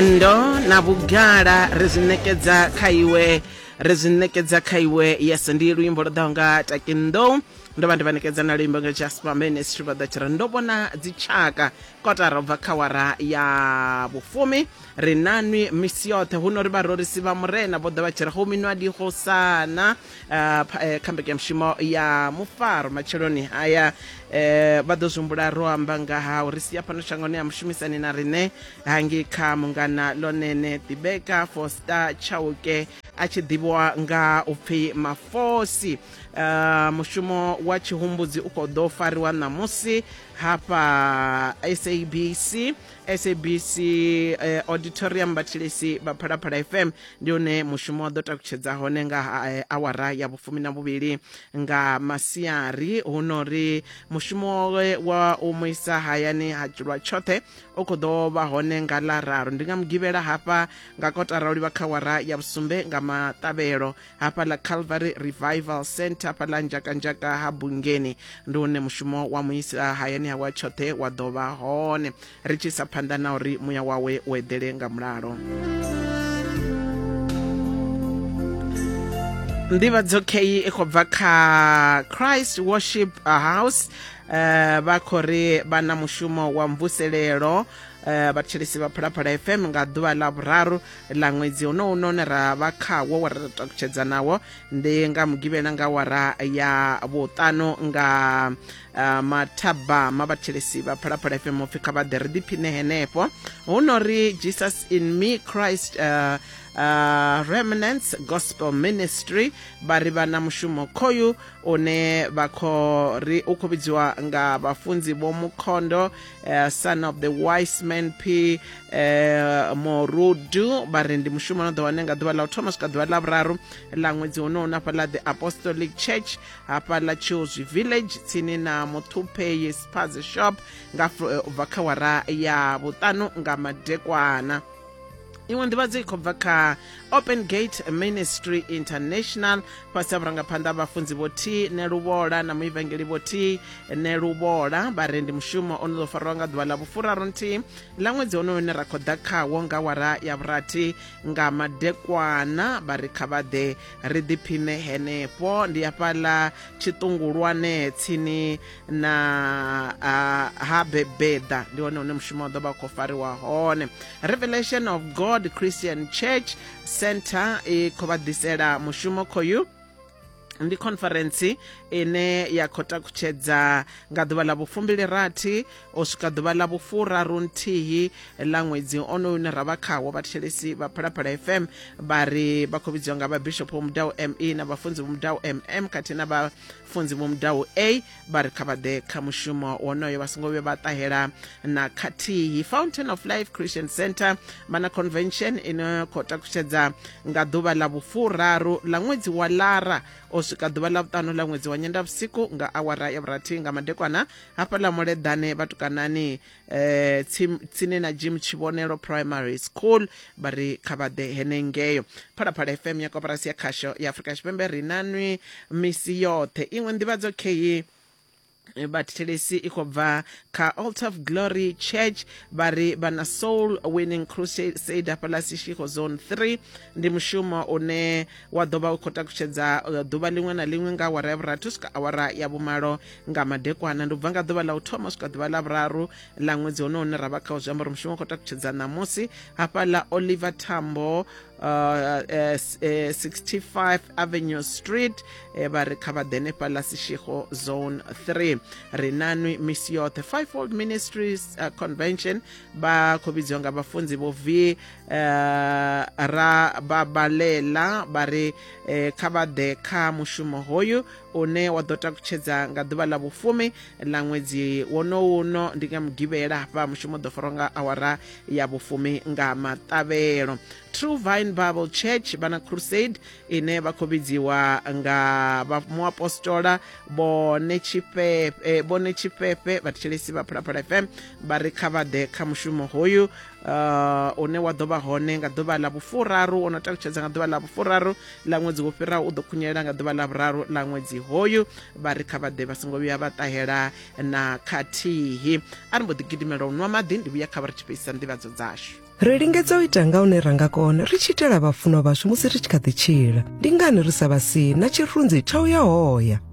ndo na vhugala ri zwi ṋekedza kha iwe ri zwi ṋekedza kha iwe yes ndi luimbo lwo ḓaho nga takindo ndo vha ndi vha ṋekedza na luimbo nga jasper ministry vha ḓa tshira ndo vhona dzitshaka kotara ubva kha wara ya vhufumi ri nanwi misi yoṱhe hu no ri vharorisi vha murena vho ḓa vha tshira ho minwa diho sana eh, eh, kha mbekanyamushumo ya mufaro matsheloni haya eh, vha ḓo zwi humbula ro amba nga ha uri sia fhano shangoni ya mushumisani na riṋe hangi kha mungana lonene ḓibeka foster chauke a tshi ḓivhiwa nga u pfi mafosi uh, mushumo wa tshihumbudzi u khou ḓo fariwa ṋamusi hafha sabc sabc eh, auditorium vhathilisi vha phalaphala fm ndi hone mushumo wa ḓo takutshedza hone nga ha, eh, awara ya vhufumi na vhuvhili nga masiari hu no ri mushumo wa u mu isa hayani ha dzulwa tshoṱhe u khou ḓo vha hone nga ḽa raru ndi nga mugivhela hafha nga kotara u livha kha wara ya vhusumbe nga maṱavhelo hafha ḽa calvary revival center hafha ḽa nzhakanzhaka ha bungeni ndi hune mushumo wa muisa hayani hawa tshoṱhe wa ḓo vha hone ri tshi sa phanḓa na uri muya wawe u eḓele nga mulalo nḓivhadzo kheyi i khou bva kha christ worship house eh, vha khou ri vha na mushumo wa mvuselelo eh, vhathetshelesi vha phalaphala fm nga ḓuvha ḽa vhuraru ḽa ṅwedzi honowu none ra vha khawo wa ra takutshedza nawo ndi nga mugivhela nga wara ya vhuṱanu nga eh, mathabama vhathetshelesi vha phalaphala fm upfi kha vha ḓe ri ḓiphine henefho hu no ri jesus in me christ uh, uh, remnants gospel ministry vha ri vha na mushumo khoyu une vha khou ri u khou vhidziwa nga vhafunzi vho mukhondo uh, son of the wise man p uh, morudu vha ri ndi mushumo no ḓo wane nga ḓuvha ḽa u thoma swika ḓuvha ḽa vhuraru ḽa ṅwedzi honohu na fhaḽa the apostolic church hafhaḽa chilswi village tsini na muthupei spaze shop nga eh, u bva kha wara ya vhuṱanu nga madekwana iṅwe nḓivhadzo i khou bva kha open gate ministry international fhasi ha vhurangaphanḓa ha vhafunzi vho t neluvhola na muivangeli vho t neluvhola vharendi mushumo o no ḓo farwa nga ḓuvha ḽa vhufuraru nthihi ḽa ṅwedzi honoyo une ra khou ḓa khawo nga wara ya vhurathi nga madekwana vha ri kha vhaḓe ri ḓiphine henefho ndi hafhaḽa tshiṱungulwane tsini na uh, ha bebeda ndi hone hune mushumo wa ḓo vha khou fariwa hone revelation of god christian church center i khou vha ḓisela mushumo khoyu ndi conference ine ya khou takutshedza nga ḓuvha ḽa vhufumbili rathi o swika ḓuvha ḽa vhufuraru nthihi ḽa ṅwedzi onoyu une ra vha khawo vhathetshelesi vha phalaphala fm vha ri vha khou vhidziwa nga vhabishop vho mudau me na vhafunzi vho mudau mm khathihi na funzi vho mudaho a vha ri kha vha ḓe kha mushumo wonoyo vha songo vhuya vha ṱahela na khathihi fountain of life christian center vha na convention ino khou takutshedza nga ḓuvha ḽa vhufuraru ḽa ṅwedzi wa lara o swika ḓuvha ḽa vhuṱanu ḽa ṅwedzi wa nyenda vhusiku nga awara ya vhurathi nga madekwana hafhaḽa muleḓane vhatukanani eh tsim- tsini na jim tshivhonelo primary school vha ri kha vha ḓe henengeyo phalaphala fm ya koporasi ya khasho ya afurika tshipembe ri na nwi misi yoṱhe iṅwe nḓivhadzo kheyi vhathelesi i khou bva kha alt of glory church vha ri vha na soul winning crusade hafhaḽa sishiko zone 3 ndi mushumo une wa ḓo vha u khou takutshedza uh, ḓuvha liṅwe na liṅwe nga awara ya vhurathi u swika awara ya vhumalo nga madekwana ndi bva nga ḓuvha ḽa u thoma swika ḓuvha ḽa vhuraru ḽa ṅwedzi hone hune ra vha khawo zwi amba uri mushumo khou takutshedza ṋamusi hafha ḽa oliver tambo uh, uh, 65 avenue street eh, vha ri kha vha ḓene fhaḽa sishigo zone 3 ri nanwi misi yoṱhe fivefold ministries uh, convention vha khou vhidziwa nga vhafunzi vho vi uh, ra babalela vha ri eh, kha vha ḓe kha mushumo hoyu une wa ḓo takutshedza nga ḓuvha ḽa vhufumi ḽa ṅwedzi wonowu uno ndi nga mugivhela hafha mushumo ḓo farwa nga awara ya vhufumi nga maṱavhelo true vine bible church vha na crusade ine vha khou vhidziwa nga muapostola bone tshifhefe bone tshifhefe vhathetshelesi vha phalaphala fm vha ri kha vha ḓe kha mushumo hoyu uh, une wa ḓo vha hone nga ḓuvha ḽa vhufuraru o no talutshedza nga ḓuvha ḽa vhufuraru ḽa ṅwedzi wo fhiraho u ḓo khunyelela nga ḓuvha ḽa vhuraru ḽa ṅwedzi hoyu vha ri kha vhaḓe vha songo vhuya vha ṱahela na khathihi a ri mbo ḓi gidimela u nwa maḓi ndi vhuya kha vha ri tshi fhedzisa nḓivhadzo dzashu ri lingedza u ita nga hune ra nga kona ri tshi itela vhafunwa vhashu musi ri tshi kha ḓi tshila ndi ngani ri sa vha si na tshirunzi tsha u ya hoya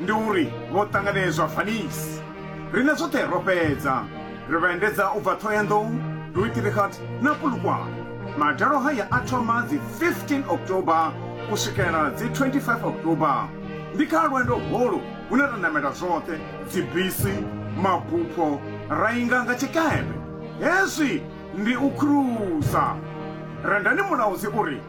Ndi uri vho ṱanganedzwa Vanice. Riṋe zwoṱhe ro fhedza ri vha endedza u bva Thohoyandou, Rooiterigat na Polokwane. Madalo haya a thoma dzi 15 October u swikela dzi 25 October. Ndi kha lwendo holu hune ra namela zwoṱhe, dzibisi, mabupho, ra inga nga tshikepe. Hezwi ndi u khurusa. Rendani Mulaudzi u ri.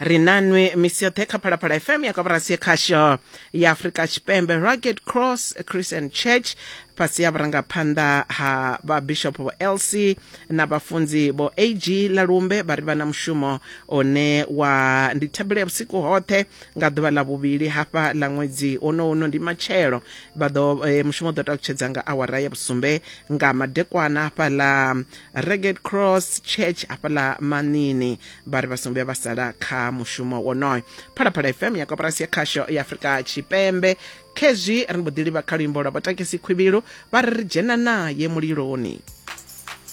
ri nanwi misi yoṱhe kha phalaphala fm ya kaburasi ya khasho ya afurika tshipembe rugged cross christian church fhasi ya vhurangaphanḓa ha vhabishop vho lc na vhafunzi vho ag lalumbe vha ri vha na mushumo one wa ndi thabelo ya vhusiku hoṱhe nga ḓuvha ḽa vhuvhili hafha ḽa ṅwedzi ono uno ndi matshelo vha ḓo eh, mushumo ḓo takutshedza nga awara ya vhusumbe nga madekwana hafha ḽa rugged cross church hafha ḽa manini vha ri vha songo vhuya vha sala kha mushumo wonoyo phalaphala fm ya koporasi ya khasho ya afurika tshipembe khezwi ri mbo ḓi livha kha luimbo lwa vhatakisi khwivhilu vha ri ri dzhena naye muliloni